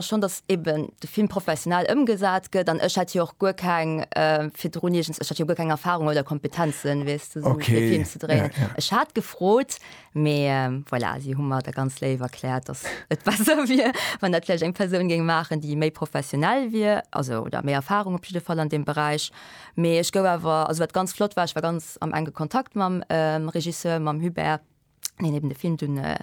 Schonn datt eben de Film professionell ëmgesat gëtt, an ech hätt jo och guer keng, virdrun iergens, ech hat jo guer keng Erfahrung oder Kompetenzen, weess de, esou e Film ze dréinen. Ech hat gefrot, mee voilà, si hu mer da ganz léif erkläert, datt et besser wier, wann dat vläicht eng Persoun géing maachen, déi méi professionell wier, also oder méi Erfahrung op jidde Fall an deem Beräich. Mee ech gouf awer, also wat ganz flott war, ech war ganz am enge Kontakt mam Regisseur, mam Hubert. deen eben de Film dun äh,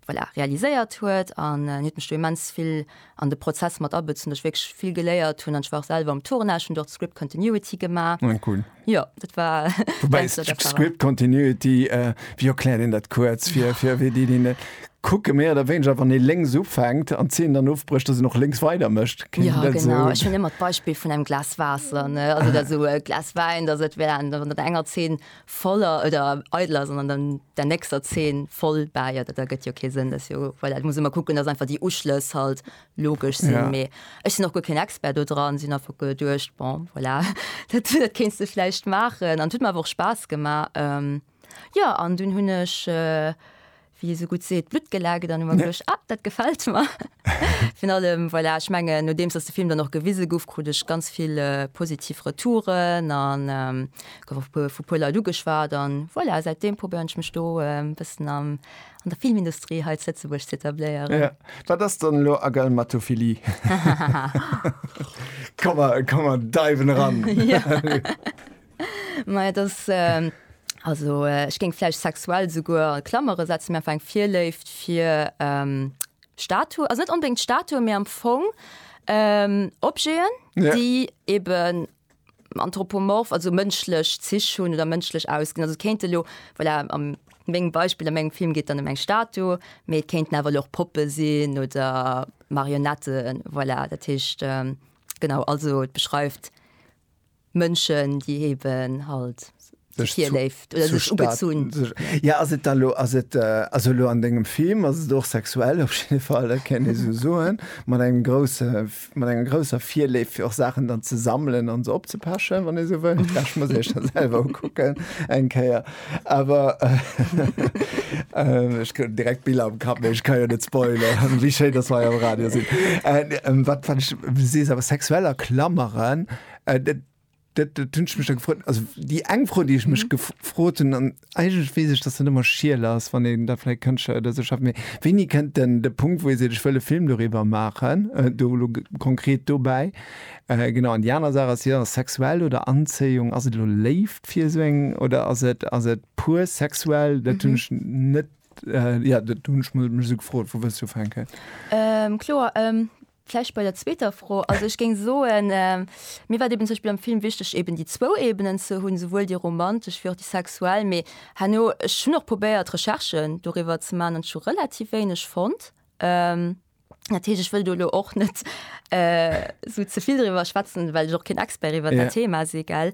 voilà, realiséiert huet an äh, huet mech du immens vill an de Prozess mat abëtzen, duch wékch vill geléiert hunn an ech war och selwer am Tournage, hunn dort Script Continuity gemaach. Ah, cool. Ja, dat war Wobei Script Continuity, äh, wéi erkläert een dat kuerz fir, fir wéi déi, déi net kucke méi oder wéineger, wann ee lénks ufänkt an d'Zeen dann ofbrécht, dass een och lénks weider mécht? Ja, genau. So? Ech hunn ëmmer d'Beispill vun engem Glas Waasser, ne? Also, dat esou e Glas Wäin, dass et wär, wann der enger Zeen voller oder eidel ass an an dann der nächster Zeen voll bäiert, dat ergëtt jo kee Sënn, dat ass jo, voilà, et muss ëmmer kucken, dass einfach déi Uschlëss halt logesch sinn. Ja. Mee ech sinn och guer keen Expert do dran, sinn einfach geduecht, bon, voilà, dat dat kéints de vläicht maachen an et huet mer awer och Spaass gemaach. Jo, an dunn hunn ech wéi ee sou gutt seet, d'Blutt gelaacht an hu mer geduecht, ah, dat gefält mer. Virun allem, voilà, ech mengen, nodeems datt de Film dann och gewise gouf, krut ech ganz vill positiv Retouren a gouf och vu e puer Leit ugeschwat. A voilà, säit deem probéieren ech mech do e bëssen an der Filmindustrie hei zu Lëtzebuerg ze etabléieren. Jo, wat ass dann elo Agalmatophilie? Komm mer, komm mer deiwen eran. Mei das äh, also äh, ech géng vläicht sexuell souguer an Klammere setzen, mir einfach eng Virléift fir ähm, Statu, also net onbedingt Statue, mir am Fong ähm, Objeten, Ja. déi eben anthropomorph, also mënschlech Zich hunn oder mënschlech ausginn. Also kéinte lo voilà, am mengem Beispiel an mengem Film geet dann em eng Statu, mee et kéinten awer och Poppe sinn oder Marionetten, voilà, dat heescht ähm, genau, also et beschreift Mënschen déi eben halt sech virléift oder sech ugezunn. Jo ass et da lo ass et also lo an dengem Film ass et och sexuell op jidde Fall dat kéint ee sou soen mat engem grousse mat enger grousser Virléift fir och Saachen dann ze sammelen an se opzepechen wann ee sou wëll. Vläch muss ee sech da selwer ukucken eng Kéier awer ech krut direkt Biller am Kapp mee ech ka jo net spoileren wéi schéin dass mer hei am Radio sinn. Wat wat ech sees awer sexueller Klameren Äh, dat, dat, dat hunn ech mech da gefrot. Also déi eng Fro, déi ech mech gefrot hunn, an eigentlech weess ech, datt dat ëmmer schiel ass, wann een da vläicht Kënschtler oder esou schafft, mee wéini kënnt dann de Punkt, wou ee seet, ech wëll e Film doriwwer maachen, do elo konkret dobäi? Genau, an déi aner Saach ass jo, sexuell oder Anzéiung, ass et elo Léift fir esou eng oder ass et, ass et pur sexuell? Dat hunn ech net, jo, dat hunn ech mech esou gefrot, wou wëlls du ufänken? Kloer. Vläicht bei der zweeter Fro. Also ech géing soen, mir war et eben zum Beispill am Film wichteg eben déi zwou Ebenen ze hunn, souwuel déi romantesch wéi och déi sexuell. Mee herno, ech hunn och probéiert Recherchen doriwwer ze maachen an ech hu relativ wéineg fonnt. Dat heescht, ech wëll do elo och net esou ze vill doriwwer schwätzen, well ech och keen Expert iwwer dat Thema si, gell.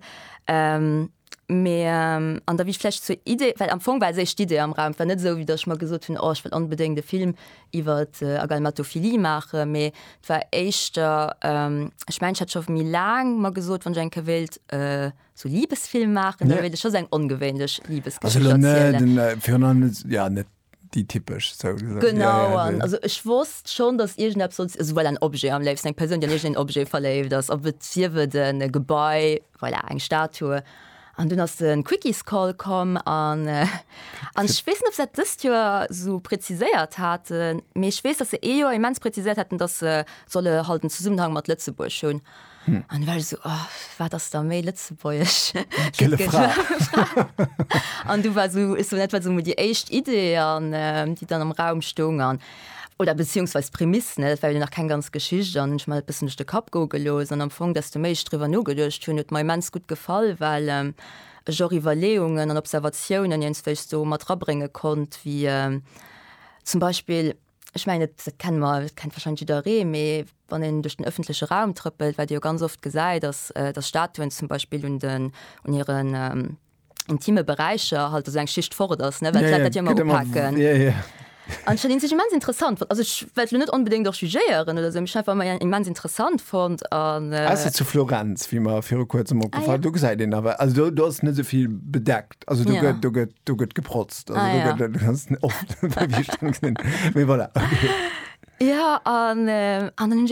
Mee an da wéi ech vläicht zur Idee, well am Fong war séch d'Idee am Raum, et war net esou wéi datt ech mer gesot hunn, oh ech wëll onbedéngt e Film iwwer Agalmatophilie maachen, mee et war éischter, ech mengen ech hat scho méi laang mer gesot, wann ech eng Kéier wéilt sou Libesfilm maachen, da wéilt ech scho sou eng ongewéinlech Libesgeschicht erzielen. déi typesch sou gesot. Genau an also ech wosst schonn, datt iergendeppes sollt also well en Objet am léifsten, eng Persoun, déi an iergend een Objet verléift ass, ob et sief et en e Gebai, voilà, eng Statue. An dunn ass de Quickiescall komm an an ech weess net, ob se dat dëst Joer esou präziséiert haten, mee ech weess, datt se ee Joer immens präziséiert haten, datt se solle halt en Zesummenhang mat Lëtzebuerg hunn. Hm. An well so oh, wat ass der méi Lëtzebuerg An du war so, so net wat so déi éischt Idee an ähm, déi dann am Raum stung an oder beziehungsweise Prämiss net well nach kein ganz Geschicht an ich mal bis nicht de Kap go gelos an am Fong dass du méich drüber no gedurcht hun mein mens gut gefall weil ähm, Jo Iwwerleungen an Observatiounen jens wéichst du mat rabrénge konnt, wie äh, zum Beispill Ech mengen, dat, dat kenne mer, dat kennt wahrscheinlech jidderee, mee wann een duerch den öffentleche Raum trëppelt, wat ee jo ganz oft gesäit, ass, datt Statuen zum Beispill un den, un hiren intime Beräicher halt esou eng Schicht fort ass, ne, well d'Leit dat jo ëmmer upaken. An ech fannen sech immens interessant fonnt, also ech well elo net onbedéngt och jugéieren oder esou, mee ech hunn einfach ëmmer en immens interessant fonnt an. Ausser zu Florenz, wéi mer viru Kuerzem opgefall, do gesäit een awer, also do, do ass et net esou vill bedeckt. Also do gëtt do gëtt do gëtt geprotzt. Also do gëtt du kannst net oft. Mee voilà. Ja an an dann hunn ech.